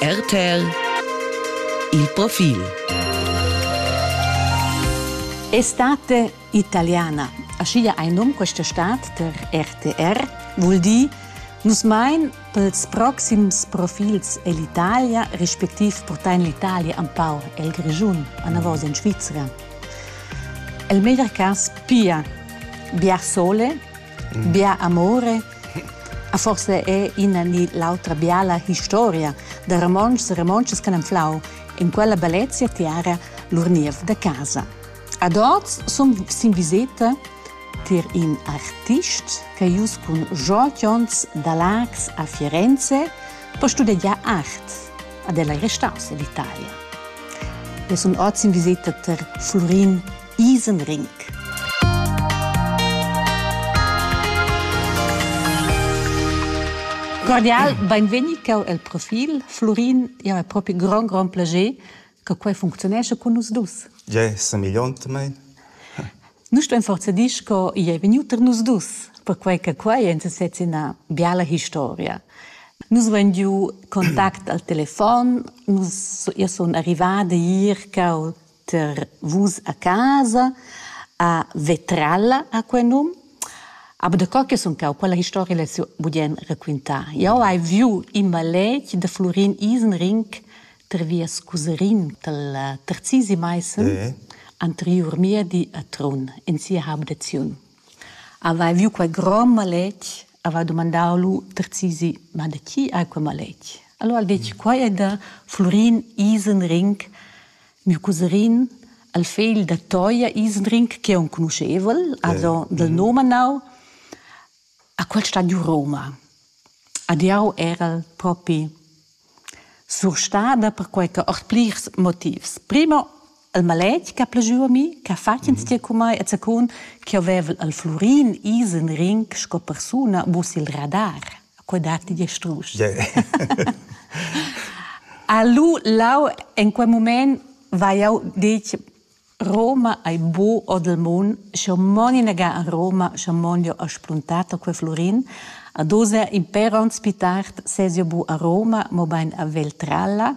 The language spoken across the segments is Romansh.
RTL Il profil Estate italiana. Aschia ein num questa stat der RTR vul dir Nus mein pels proxims profils ell'Italia, respektiv portar in l'Italia empau el Grischun, anavos in Svizzera. El meglier cas pia bia sole, mm. bia amore Forsa è ina ni l'autra biala historia da romontschs e romontschas che han flau in quella bellezia tiara lur niev da casa. Ad oz sun sin viseta tier in artist che ius cun jotions da Lax a Firenze per studegiar art ad el ei restaus in Italia. E sun oz in viseta ter Florin Isenring. Cordial, benvegni cheu el profil. Florin, ja, è proprio un gran, gran piacere che qua funzionesce con nus dus. Ja, somigliant mein. Nu sto forza dir che i è venuto per nus dus, perquai che qua è sezzi una biala historia. Nus voin giu contact al telefon, nus io sono arrivata ier che ter vus a casa a vetralla a quei num aber da co che sun cau quella historia l'hai budien raquintar jau hai viu in maletg da Florin Isenring ter vias cuserin tal terzisi Meissen eh. anteriur miedi a Trun in sia habdaziun avai viu quei grom maletg avai domandau lu terzisi ma da chi hai quei maletg allora al detg quai è da Florin Isenring Miu cuserin, il fegl da Toia Isdring, che è enconuschevel, also dal nome manau, ha quel stadiu Roma. Ad jau era propi surstada perquai che ord plirs motivs. Primo, il maletg che ha plajù a mi, che ha fatg instier cun mai e secund, che avevel il Flurin Isenring sco persuna mus il radar. quei datti die strusch. Yeah. Alu lau in quel moment va jau dic Roma ai bu o del mun, scho moni nega a Roma, scho mon jo a spuntato quel florin, a dosa imperonts pitart sesio bu a Roma, mo bein a Veltralla,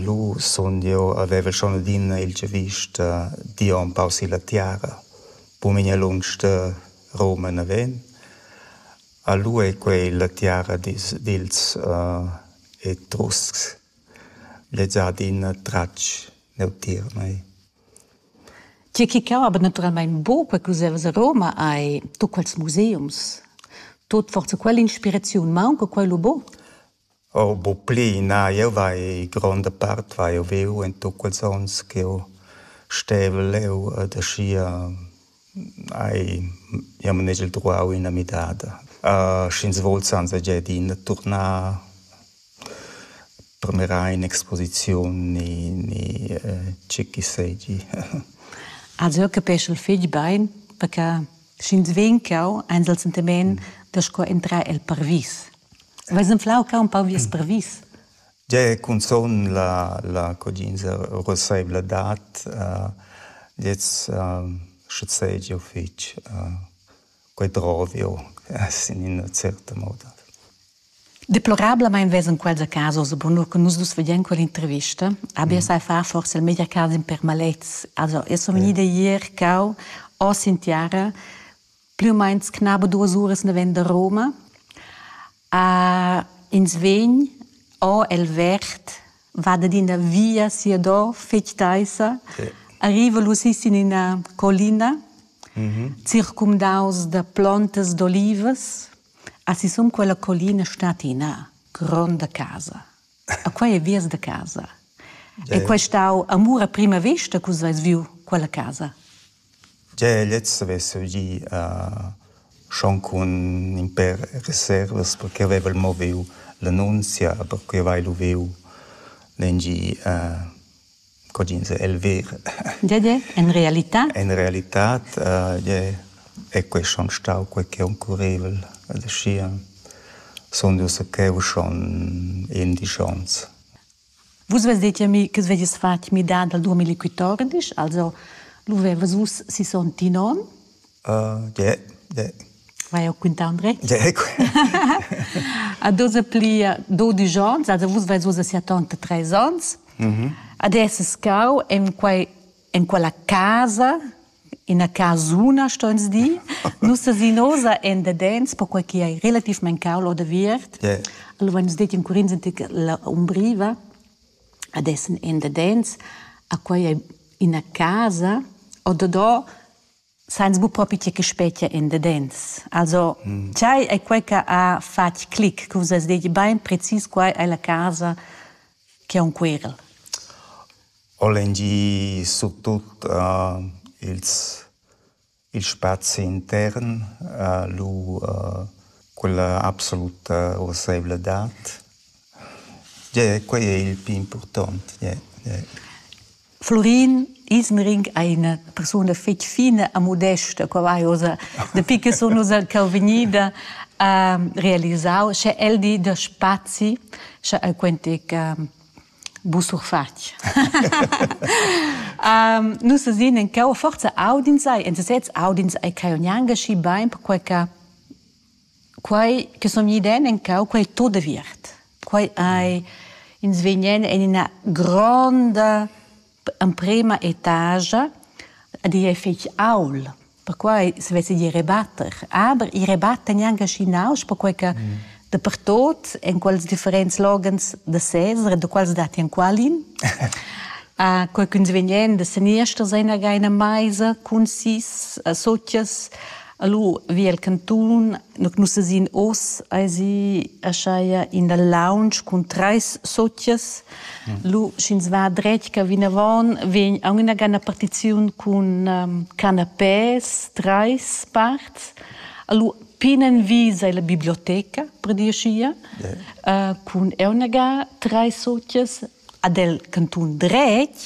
Lu sun jeu avevel schon adina il giavüsch da dir empau silla tiara. Bumigna lunsch da Roma naven. A lu ei quei la tiara dils, dils Etruscs. Lez ha adina tratg neutier a mei. Tgi che cau aber naturalmein buca quels evas a Roma ei tut quels museums. Tut forsa quell'inspiraziun maunca quei lu buc? Oh bucplü na, jeu vai gronda part vai o viu en tut quels onns ch'jeu stevel leu ed aschia hai jeu manegel truau ina midada. sch'ins vul sanza Giadina turnar per mirar in'exposiziun ni ni tgi che seigi. Also jeu capeschel fetg bein perche Sch'ins vegn cau, eins el sentimen da sco entrar el parvis. Veis enflau cau un pau vies mm. parvis? Ge cunzun la, la codinza roseivla dat, uh, gliez uh, schuzeigio fich uh, quei drovio, sin ina certa moda. Deplorablamein vesan quels a casa oz bunur che nus dus veglien quell'intervista. Abbia sai far forse il media casa in permalets. Also, io sono vegnida ieri cau oss in tiara, più o meno knaba duas uras neven da Roma. Uh, ins vegn o el vert va ad ina via sia do fetg teissa, sì. arriva lu sis in ina collina, mm -hmm. circumdaus da plontas d'olivas, Ha sisum quella collina stat ina gronda casa. A quei ei vias da casa. E quei stau amur a prima vesta che vus veis viu quella casa. Gia lez havess gì uh, schon cun in per reservas perché aveva il moviu l'annunzia, perché aveva il uviu lengi uh, Cogins è el ver. Gie, gie, en realità. En realità è quei schon stau quei che oncurrevel. Aschia sun dus cheu schon indisch onns. Vus vezdete mi che vedies fatg midada al 2014, also lu vevas vus si son Tinon Ie ie. Vai o quintà André? Ie A dosa pli dodisch ans, also vus vais ussa sia tanta treis ans. Adesso scau en quai en quella casa, ina casuna sto ins dir. Nus sesinosa en dadens, perquai che ei relativmain caul odaviert. Ie. Allura nus detti in curins antic la umbriva, adesso en dadens, a quai ei ina casa, o dadò Sainz buc propi tgei che spetga endadens. Also, mm. tgei ei quei che ha fatg clic, che vus has detg bein precis quai è la casa che è un querel? Holangi su tut uh, ils, il spazi intern, uh, lu uh, quella absoluta urseivladad. Yeah, quei è il più important. Yeah, yeah. Florin Ismering è ina persuna fitg fina e modesta, qua vai oza, dapi che sun oza cheu vegnida a realisau, sche el di da spazi, sche el quentic um, busurfatg. um, nus esin en cheu forza audins ai, en sesez audins ai cheu gnanca schi bein, perquei che Quai che sun gnü iden encau, quai è tut aviert. Quai ei ins vegnan en ina gronda emprema etagia a dir fetg aul, perquai se vess dir rebatter. Aber i rebatta gnanca schi nausch, perquai che dapertut en quels differents loghens da sezs, da quals datti enqualin, quai ch'ins vegnan da seniester sein agai ina meisa cun sis sutgas, Allura vi el cantun, nu nus esin oz, esi aschaja in dal lounge cun trais sozias. Lu, sch'ins va dretg ca vinavon, vegn aunc inagana partiziun cun ehm, canapés, trais parts. Allura plinenvi sei la biblioteca, per dir schia. cun eu inaga trais sozias. Ad el cantun dretg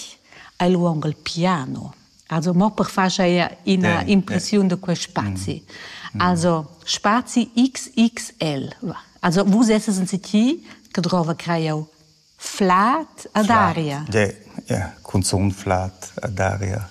hai lu aunc il piano. Also mo per far ina yeah, impressiun yeah. da quel spazi. Mm. Mm. Also spazi XXL. Also vus esses in City che trova creio flat ad aria. Yeah, yeah, cunzun flat ad aria.